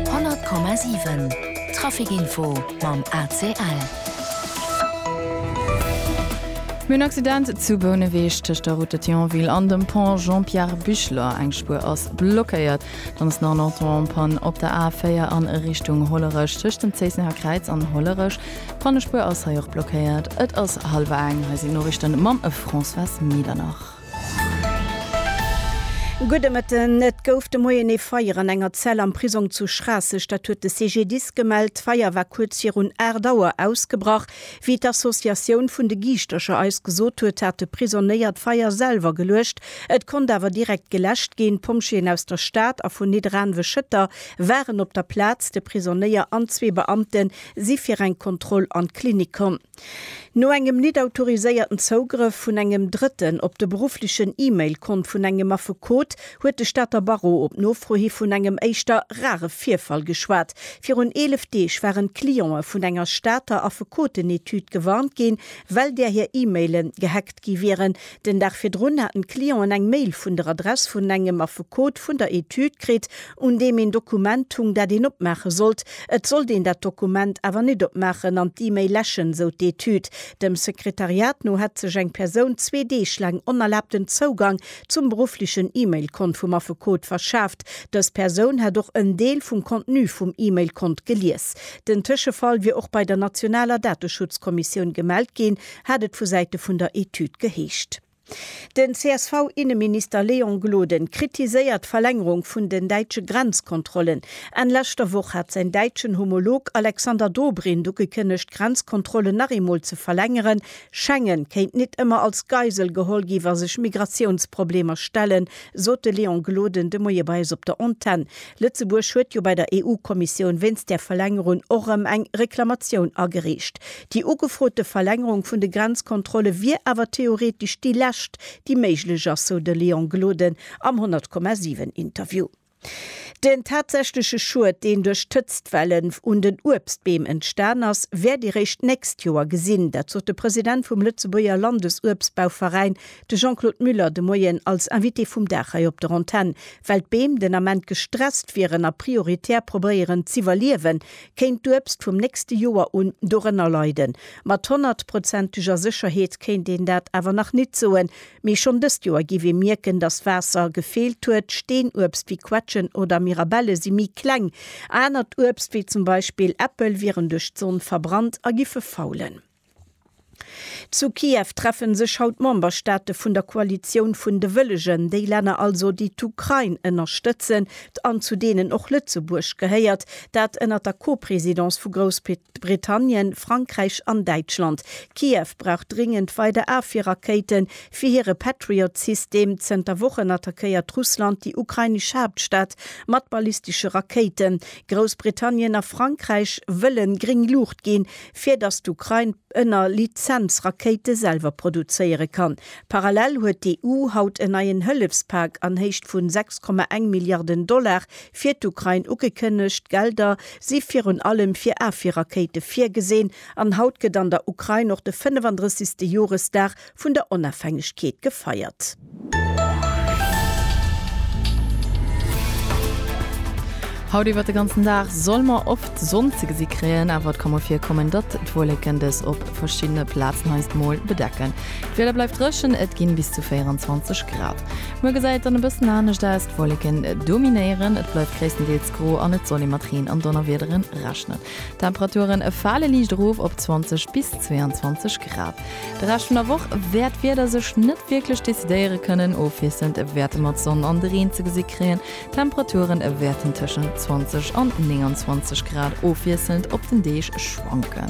100,7 Traficinfo mam ACL. Mir hunn en Accident zu Bouneweg tëscht der Route de Thionville an dem Pont Jean-Pierre Bichler. Eng Spuer ass blockéiert. Dann ass nach en Auto en panne op der A4 a Richtung Hollerech. Tëscht dem Zéissener Kräiz an Hollerech Pannespuer ass hei och blockéiert. Et ass hallwer eng. Hei sinn d'Noriichten mam Françoise Medernach. Gudde Mëtten. Et gouf de Moien ee Feier an enger Zell am Prisong zu Schraasseg. Dat huet de CGDIS gemellt. D'Feier war kuerz virun 8 Auer ausgebrach. Wéi d'Associatioun vun de Giischtercher eis gesot huet, hat de Prisonéier d'Feier selwer geluecht. Et konnt awer direkt geläscht ginn. D'Pompjeeën aus der Stad a vun Nidderaanwe-Schëtter waren op der Plaz. De Prisonéier an zwee Beamte si fir eng Kontroll an d'Klinik komm. No engem nit autoriséierten Zougrëff vun engem Drëtten op de berufflechen E-Mail-Kont vun engem Affekot huet de Stater Barreau op Nofro hi vun engem éischter rare Virfall geschwat. Virun 11 Deeg waren d'Cliente vun enger Stater Affekotenetude gewarnt ginn, well där hir E-Mailen gehackt gi wieren. Den Dag virdrun haten d'Clienten eng Mail vun der Adress vun engem Affekot vun der Etüd kritt, un deem een Dokument hung, dat een opmaache sollt. Et sollt een dat Dokument awer net opmaachen an d'E-Mail läschen, sou d'Etüd. Dem Sekretariat no hätt sech eng Persoun zwee Deeg laang onerlaabten Zougang zum berufflechen E-Mail-Kont vum Affekot verschaaft. Dës Persoun hätt och en Deel vum Contenu vum E-Mail-Kont gelies. Den Tëschefall wier och bei der nationaler Dateschutzkommissioun gemellt ginn, hat et vu Säite vun der Etüd geheescht. Den CSV-Inneminister Léon Gloden kritiséiert d'Verlängerung vun den däitsche Grenzkontrollen. Enn leschter Woch hat säin däitschen Homolog Alexander Dobrindt ugekënnegt, d'Grenzkontrollen nach eemol ze verlängeren. Schengen kéint nit ëmmer als Geisel geholl gi wa sech Migratiounsproblemer stellen, sot de Léon Gloden de Moie bei eis op der Antenn. Lëtzebuerg huet jo bei der EU-Kommissioun wéinst där Verlängerung och erëm eng Reklamatioun agereecht. Déi ugefrote Verlängerung vun de Grenzkontrolle wier awer theoretesch déi lescht, déi méiglech ass, sou de Léon Gloden am 100,7 Interview. Den tatsächleche Schued, deen duerch d'Hëtztwellen un den Uebstbeem entstan ass, wäert ee réischt d'nächst Joer gesinn. Dat sot de President vum Lëtzebuerger Landesuebstbauveräin, de Jean-Claude Muller, de Moien als Invité vum Dag hei op der Antenn. Well d'Beem den Ament gestresst wieren a prioritär probéieren z'iwwerliewen, kéint d'Uebst vum nächste Joer un dorënner leiden. Mat honnertprozenteger Sécherheet kéint een dat awer nach nit soen. Mee schonn dëst Joer giff ee mierken, dass Waasser gefeelt huet. Steenuebst wéi Quetschen oder Mirabelle si méi kleng. Anert Uebst, wéi zum Beispill Äppel, wieren duerch d'Sonn verbrannt a giffe faulen. Zu Kiew treffe sech haut d'Memberstaate vun der Koalitioun vun de Wëllegen, déi Länner also, déi d'Ukrain ënnerstëtzen an zu deenen och Lëtzebuerg gehéiert. Dat ënnert der Co-Presidence vu Groussbritannien, Frankräich an Däitschland. Kiew brauch dringend weider Afwierrakéiten fir hire Patriot-System. Zënter Wochen attackéiert Russland déi ukrainesch Haaptstad mat ballistesche Rakéiten. Groussbritannien a Frankräich wëlle gréng Luucht ginn, fir datt d'Ukrain ënner Lizenz Rakéite selwer produzéiere kann. Parallel huet d'EU haut en neien Hëllefspak an Héicht vu 6,1 Milliarden Dollar fir d'Ukrain ugekënnegt. D'Gelder si virun allem fir Afwierrakéite virgesinn. An haut gëtt an der Ukrain och de 35. Joresdag vun der Onafhängegkeet gefeiert. Haut iwwert de ganzen Dag solle mer oft d'Sonn ze gesi kréien, awer et ka mol virkommen, datt d'Wollécken dës op verschiddene Plazen heiansdo mol bedecken. D'Wieder bleift dréchen, et ginn bis zu 24 Grad. Muer gesäit et dann e bëssen anescht aus, d'Wollécken dominéieren, et bleift gréisstendeels gro an et soll ee mat Reen an Donnerwiederen rechnen. D'Temperaturen fale liicht erof op 20 bis 22 Grad. De Rescht vun der Woch wäert d'Wieder sech net wierklech decidéiere kënnen. Ofwiesselnd wäerte mer d'Sonn an de Reen ze gesi kréien. D'Temperature wäerten tëschent 20 an 29 Grad ofwiesselnd op den Deeg schwanken.